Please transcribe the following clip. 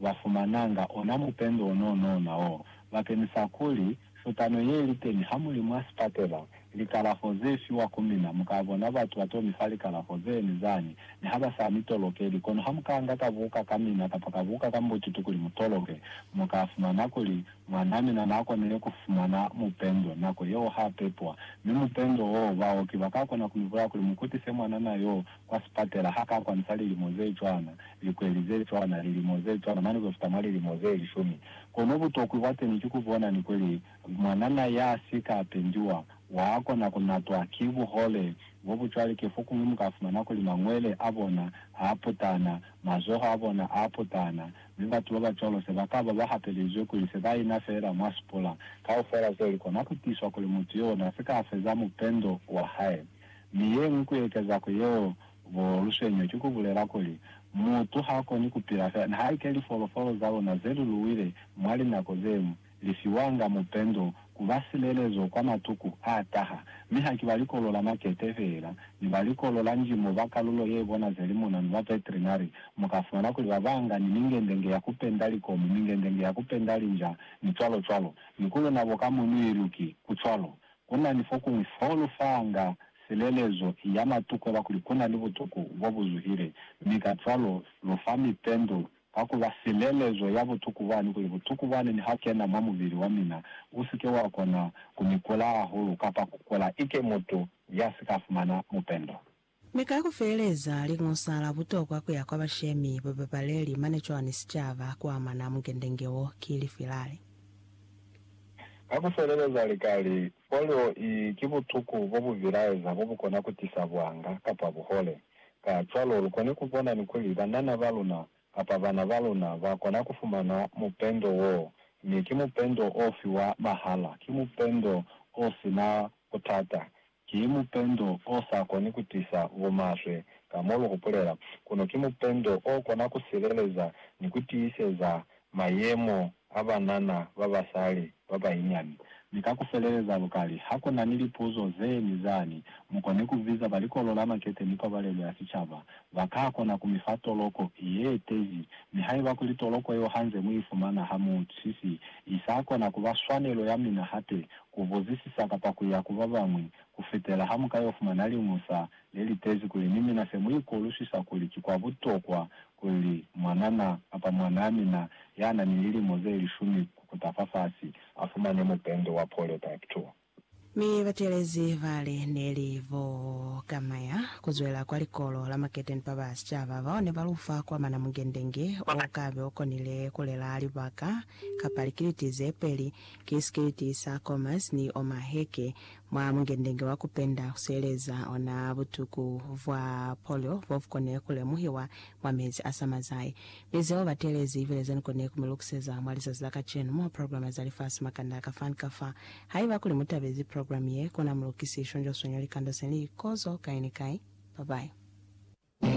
ba fumananga ona mupendo o n'o n'ona o bakenisa kuli, futano ye li teni ha mu li mwa sipatela, likalafo ze fiwa ku mina. Mu ka bona batu ba t'o mi fa likalafo ze ni zani, mi ha ba sa mi tolokeli. Kono ha mu ka nga ka buka ka mina kapa ka buka ka mbututu kuli mu toloke, mu ka fumana kuli, Mwan'a mina n'a konile ku fumana mupendo nako yeo ha pepwa. Mi mupendo w'o, baoki ba ka kona ku mi bulaya kuli mu kutise mwanana y'o kwa sipatela ha ka kwanisa lilimo ze cwana, likweli ze cwana, lilimo ze cwana, mane ku fita mwa lilimo ze lishumi. Kono butokwi bwa teni ki ku bona ni kuli, mwanana ya si ka pendiwa, wa kona ku natwa ki buhole bo bu cwale. Ki fokuñwi mu ka fumana kuli mangwele a bona a putana, mazoho a bona a putana, mi batu ba ba cwalo se ba ka ba ba hapelizwe kuli se ba ina feela mwa sipula. Kaufela zeo li kona ku tiswa kuli mutu yo n'a si ka feza mupendo wa hae. Mi yeñwi kuyekeza ku yeo, bo luswenyo ki kubulela kuli, mutu hakoni kupila fela nihaike lifolofolo zaluna zeluluwile mwa linako zemu, lifiwanga mupendo kuba silelezo kwa matuku ataha. Mi haki ba likolo la makete fela, ni ba likolo la ndimo ba kalulo yebona zeli monanu ba veterinary, mukafumana kuli babanga ni mingendenge ya kupenda likomo, mingendenge ya kupenda linja, ni cwalo cwalo. Ni kuluna bo ka mo ni iluki, kucwalo. Ku na ni fokuñwi fo lu fanga silelezo ya matu kweba kuli ku na ni butuku bo bu zuhile, mi kacwalo lu fa mipendo ka ku ba silelezo ya butuku bwani kuli butuku bwani ni ha kena mwa mubili wa mina u si ke wa kona ku ni kula hahulu kapa ku kula ike mutu ya si ka fumana mupendo. Mi ka ku feeleza, Liñusa la butokwa ku ya kwa bashemi, babapaleli, mane cwani sicaba ku amana mukendenge wo, ki lifi lali? Ka ku feeleza lika li, Folio i ki butuku bo bu bilaeza bo bu kona ku tisa buanga kapa buhole. Kacwalo, lu koni ku bona ni kuli banana ba luna kapa bana ba luna ba kona ku fumana mupendo woo. Mi ki mupendo o fiwa mahala, ki mupendo o si na butata, Ki mupendo o sa koni ku tisa bumaswe, ka mo lu hupulela, kono ki mupendo o kona ku sileleza ni ku tiiseza mayemo a banana ba basali ba banyinyani. Mi ka ku feleleza lukali, ha ku na ni lipuzo ze ni zani, mu koni ku biza ba Likolo la Makete ni Pabalelo ya Sicaba. Ba ka kona ku mi fa toloko ye tezi, mi haiba kuli toloko yeo ha nze mu i fumana ha mu si si i sa kona ku ba swanelo ya mina hape, ku buzisisa kapa ku ya ku ba bañwi, ku fetela ha mu ka y'o fumana liñusa le li tezi kuli ni mina se mu ikolusisa kuli ki kwa butokwa kuli mwanana kapa mwanaa mina ya na ni lilimo ze lishumi ku kuta fafasi a fumane mupende wa polio type 2. Mi batelezi ba li ne li bo Kamaya ku zwela kwa likolo la Maketeni ba ba sicaba bao ne ba lu fa kwa mana mungende nge o ka be o konile ku lelaa libaka kapa likiliti ze peli Ki sikiliti sa Comas ni Oma Heke mwa mungendenge wa kupenda kusieleza ona butuku bwa polio bobukone kulemuhiwa mwa mezi a samazai. Mi zeo batelezi ibile zenikone kumilukiseza mwa lizazi la kacenu mwa programe za lifasi makanda kafani kafa. Haiba kuli mutabezi programe ye, kona mulukisi shonjwa swenyu likando seli kozo kai ni kai. Bye bye.